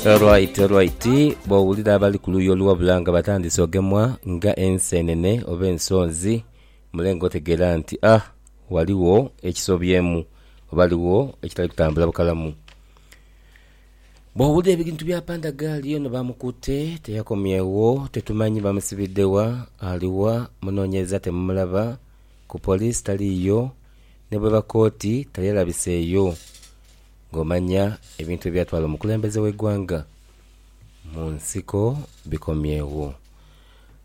Alright, alright. Bwowulira abali ku luuyi oluwabula nga batandise ogemwa nga enseenene oba ensonzi, mule nga otegeera nti ah, waliwo ekisobyemu oba waliwo ekitali kutambula bukalamu. Bwowulira ebintu bya pandagaali ono bamukutte, teyakomyewo, tetumanyi bamusibidde wa, ali wa, munoonyereza temumulaba, ku poliisi taliiyo, ne bweba kkooti tali alabiseeyo. Nga omanya ebintu ebyatwala omukulembeze w'eighanga mu nsiko bikomyegho.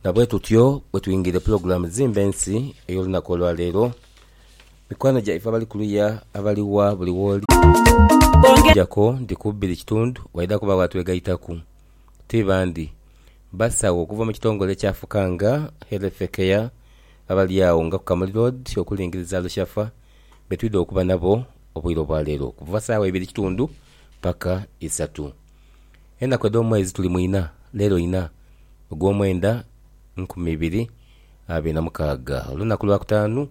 Na bwetutyo bwetwingiire pulogulaamu Zimba Ensi ey'olunaku olwaleero. Mikwano gyaife abali kuluya abali wa buli wooli okuggyako nti ku bbiri kitundu waidha kubagho atwegaitaku. Ti bandi, basawo okuva mu kitongole kya Fukanga Health Care abali agho nga ku Kamuli Road okulingiriza Lushafa. be twidha okuba nabo obwire obwa leero okuva saagha ibiri kitundu paka isatu. Enaku edh'omwezi tuli mu inha leero inha ogw'omwenda nkumi ibiri abiri na mukaaga olunaku lwa kutaanu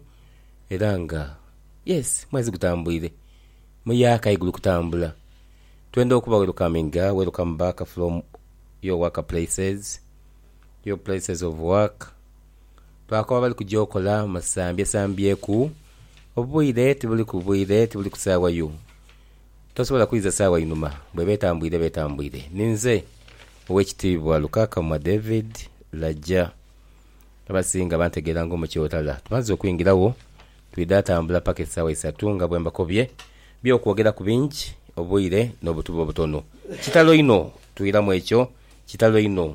era nga yes mwezi gutambwire muyaaka aye guli kutambula twenda okuba welukaminga welukame baaka from your work places, your places of work. Lwakuba bali kuja okola musambyesambyekuu. Obwire tibuli ku bwire, tibuli ku saawa yo. Tosobola kuiza saawa inhuma. Bweba etambwire eba etambwire. Ninze Owekitiibwa Lukakamwa David Laja. Abasinga bantegeera nga Omukyotala. Tumaze okwingiragho, twidha tambula paka esaawa isatu nga bwembakobye. Byokwogeraku bingi, obwire nobutube obutono. Kitalo inho! Twiramu ekyo. Kitalo inho!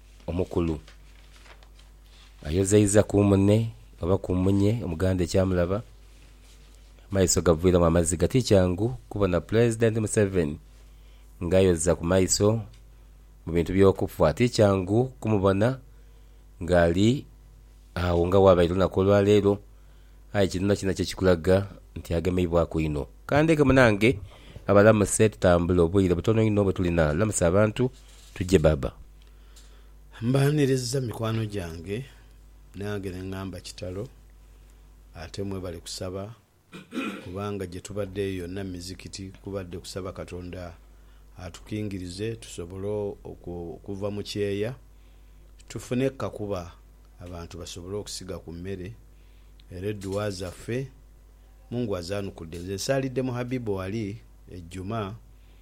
omukulu ayozaiza ku mune oba ku munye Omuganda ekyamulaba, amaiso gaviiramu amaziga. Ti kyangu kubona Pulezidenti Museveni ng'ayoza ku maiso mu bintu by'okufa. Ti kyangu kumubona ng'ali agho nga bw'abaire olunaku olwaleero. Aye kino kyona kyo kikulaga nti agemeibwaku inho. Ka ndeke munange abalamuse tutambule, obwire butono inho bwe tulina. Lamusa abantu. Tuje baba. Mbaniriza mikwano gyange nange nengamba kitalo ate mwebale kusaba kubanga gyetubadde yonna mizikiti kubadde kusaba katonda atukingirize tusobole okuva mu kyeya tufune kukakuba abantu basobole okusiga ku mmere era edduwa zaffe mungu azanukudde nze nsaalidde mu habibu wali ejjuma